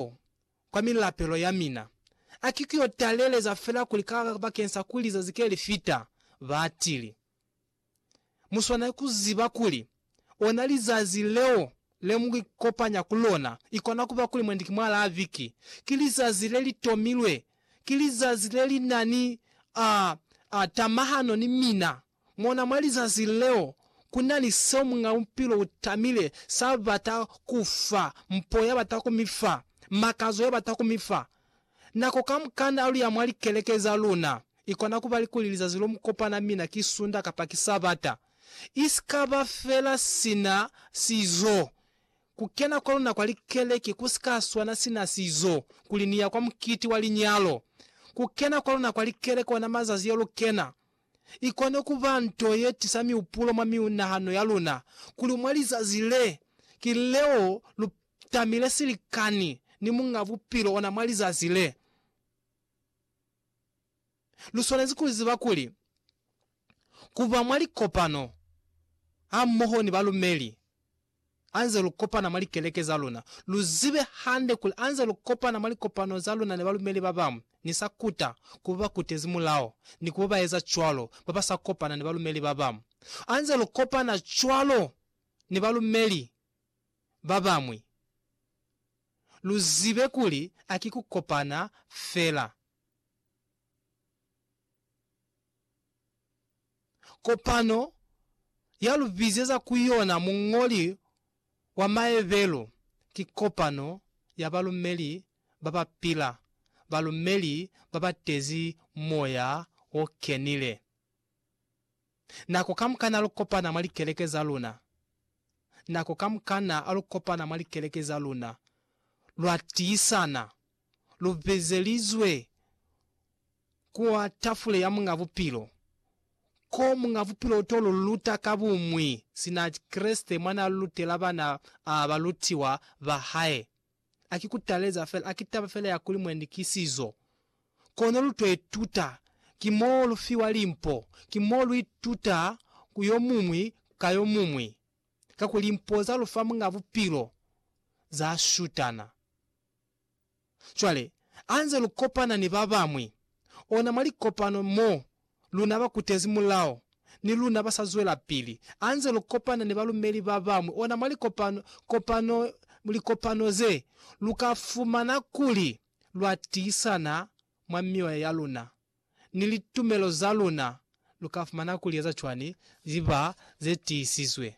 Mulaho kwa milapelo ya mina, a ki kuyo taleleza fela kuli ka bakeng sa kuli zazi ke li fita, ba tili, Mu swanela ku ziba kuli ona lizazi leo le mu ikopanya ku lona, ikona ku ba kuli mwendi ki mwa la viki, ki lizazi le li tomilwe, ki lizazi le li na ni, a, a, tamahano ni mina. Mona mwa lizazi leo, ku na ni seo Muñ'a Bupilo u tamile sa bata ku fa, mpo ya bata ku mi fa, makazo ya bata ku mi fa. Nako kamukana alu ya mwa likeleke za luna, i kona ku ba likuli lizazi lo mu kopana mina ki Sunda kapa ki Sabata, i si ka ba fela sina sizo. Ku kena kwa luna kwa likeleke ku si ka swana sina sizo kuli ni ya kwa mukiti wa linyalo. Ku kena kwa luna kwa likeleke ona mazazi yo lu kena i kone ku ba nto ye tisa mihupulo mwa miunahano ya luna kuli mwa lizazi le ki leo lu tamile silikani ni Muñ'a Bupilo ona mwa lizazi le. Lu swanezi ku ziba kuli ku ba mwa likopano hamoho ni balumeli, Anze lu kopana mwa likeleke za luna, lu zibe hande kuli anze lu kopana mwa likopano za luna ni balumeli ba bañwi. Ni sa kuta ku ba ba kutezi mulao ni ku ba ba eza cwalo ba ba sa kopana ni balumeli ba bañwi. Anze lu kopana cwalo ni balumeli ba bañwi, lu zibe kuli a ki ku kopana fela. Kopano ya lu bizeza ku yona muñoli wa maebelo ki kopano ya balumeli ba ba pila, balumeli ba ba tezi moya o kenile. Nako kamukana lu kopana mwa likeleke za luna, nako kamukana lu kopana mwa likeleke za luna, lwa tiisana. lu bezelizwe kwa tafule ya Muñ'a Bupilo, ko Muñ'a Bupilo u to lu luta ka bumwi sina Kreste mwa n'a lutela bana ba balutiwa ba hae. A ki ku taleza fela, a ki taba fela ya kuli muendikisizo. Kono lu to ituta, ki mo lu fiwa limpo, ki mo lu ituta ku yo muñwi ka yo muñwi, kakuli limpo za lu fa Muñ'a Bupilo za shutana. Cwale, ha nze lu kopana ni ba bañwi, ona mwa likopano mo luna ba kutezi mulao, ni luna ba sa zwelapili, ha nze lu kopana ni balumeli ba bañwi, ona mwa likopano, kopano, likopano ze, lu ka fumana kuli lwa tiisana mwa mioya ya luna, ni litumelo za luna, lu ka fumana kuli eza cwani, ziba ze tiisizwe.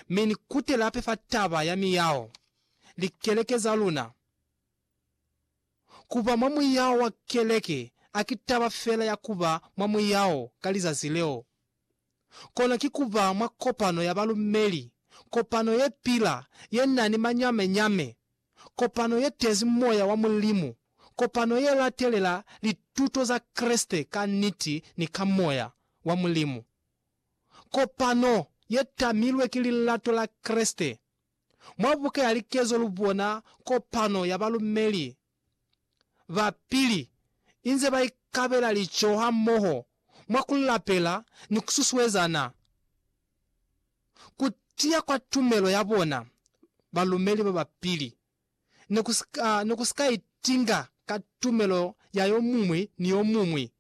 mi ni kutela hape fa taba ya miyaho likeleke za luna. Ku ba mwa muyaho wa keleke a ki taba fela ya ku ba mwa muyaho ka lizazi leo, kono ki ku ba mwa kopano ya balumeli, kopano ye pila, ye na ni mañame-ñame, kopano ye tezi moya wa Mulimu, kopano ye latelela lituto za Kreste ka niti ni ka moya wa Mulimu. kopano ye tamilwe ki lilato la Kreste. Mwa buka ya likezo lu bona kopano ya balumeli ba pili inze ba ikabela lico hamoho mwa ku lapela ni ku susuezana. Ku tiya kwa tumelo ya bona, balumeli ba ba pili ne ku si ka, ne ku si ka itinga ka tumelo ya yo muñwi ni yo muñwi,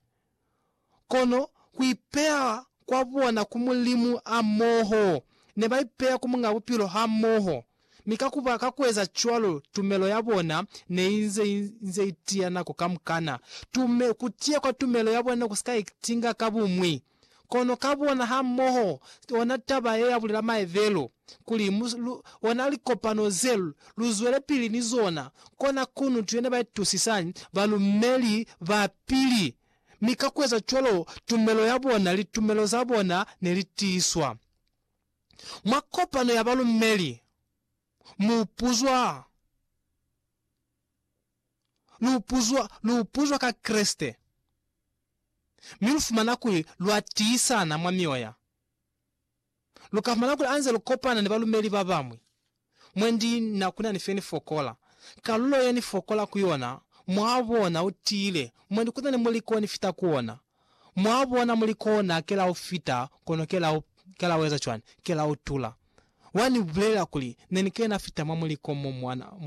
kono ku ipeya kwa bona ku Mulimu hamoho. Ne ba ipeya ku Muñ'a Bupilo hamoho, mi ka ku ba, ka ku eza cwalo, tumelo ya bona ne i nze, i nze i tiya nako kamukana. Tume, ku tiya kwa tumelo ya bona ne ku si ka itinga ka buñwi. Kono ka bona ha moho ona taba ye ya bulela maevelo kuli mu lu ona likopano ze lu zwele pili ni zona, kona kunutu yene ba itusisani balumeli ba pili, mi ka kueza cwalo tumelo ya bona, litumelo za bona ne li tiiswa. Mwa kopano ya balumeli mu puzwa. lu puzwa, lu puzwa ka Kreste, mi lu fumana kuli lwa tiisana mwa mioya. Lu ka fumana kuli anze lu kopana ni balumeli ba bañwi. Mwendi na kuna ni fe ni fokola. Kalulo ye ni fokola ku yona, mwa bona, u tiile. Mwendi kuna ni muliko ni fita ku ona. Mwa bona, muliko ona ke la u fita, kono ke la u, ke la u eza cwani? Ke la u tula. Wa ni bulelela kuli, Ne ni kena fita mwa muliko mo mwa,